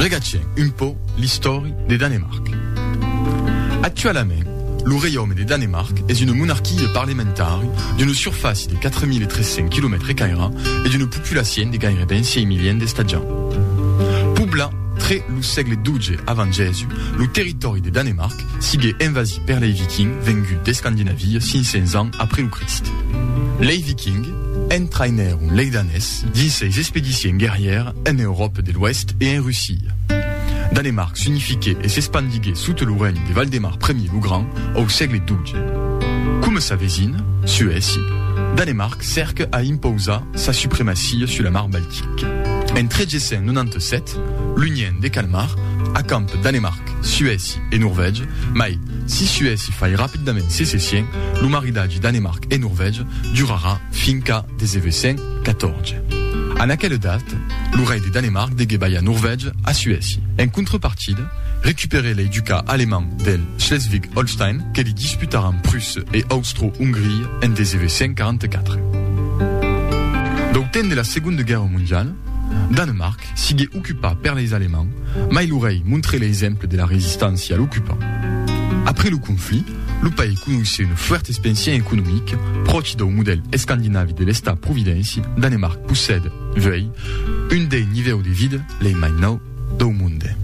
Regatgem un pauc l'istòri de Danemarc. Actualament, lo reiaume de Danemarc es una monarquia parlamentari d'una surfàcia de 4.300 quilomètres caira e d'una populacion de gaireben 6 milions d'estatjants. Poblat tre lo sègle xii avant Jèsus, lo territòri de Danemarc sigué envasit per lei Vikings venguts d'Escandinavia 500 ans après lo Crist. Lei Vikings Entrainèr un leidanés dins seis expedicions guerrièrs en Euròpa de l'Oèst e en Russia. Danemarc s'unifiquèt e s'espandiguèt sota lo règne de Valdemar Primier lo Grand au sègle xii. Coma sa vesina, Suècia, Danemarc cèrca a impausar sa supremacia sus la Mar Baltica. En 1397, l'Union de Kalmar acampa Danemarc, Suècia e Norvègia, mai, si Suècia fai rapidament secession, lo maridatge Danemarc e Norvègia durarà fin qu'a 1914. En aquela data, lo rei de Danemarc degué balhar Norvègia a Suècia. En contrapartida, recuperè lei ducats alemands del Schleswig-Holstein que li disputaràn Prússia e Austro-Ongria en 1944. Dau temps de la Segonda Guèrra Mondiala, Danemarc sigué ocupat per leis Alemands, mai lo rei montré l'exemple de la resistància a l'ocupant. Après lo conflit, lo país conoissé una fuèrta expansion economica, pròchi dau modèl escandinavi de l'Estat providénci, Danemarc possèd, uèi, un dei nivèus de vida lei mai nau dau monde.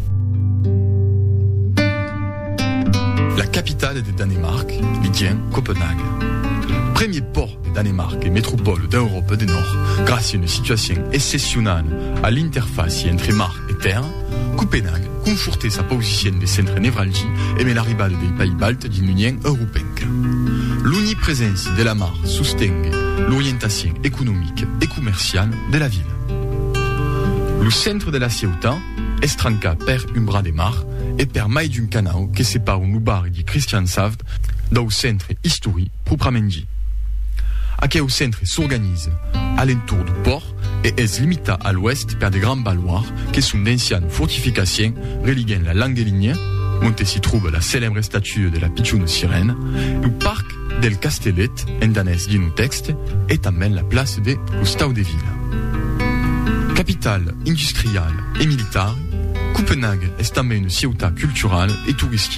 La capitala de Danemarc, Ligen, Copenhaga. Premier pòrt. de Danemarc e metropòla d'Euròpa de Nòrd gràcia a una situacion excepcionala a l'interfàcia entre mar e tèrra, Copenhague confortè sa pausicion de centre nevralgi emè l'arribada dei país baltes dins l'Union Europenca. L'onipreséncia de la mar sostengue l'orientacion economica e comerciala de la vila. Lo centre de la ciautat es trancat pèr un bras de mar e pèr mai d'un canau que separon lo barri de Christianshavn dau centre istoric proprament dit. Aqueu centre s'organize a l'entorn du pòrt e es limitat a l'oèst per de grands baloirs que son d'ancian fortificaciens religuent la Langelinia, onte s'i tròba la celèbre estatua de la pichona sirèna, lo parc del Castellet, en danés Ginnotexte, e tanben la plaça de Costau de Vila. Capital industriala e militari, Copenhague es tanben una ciutat culturala e toristica.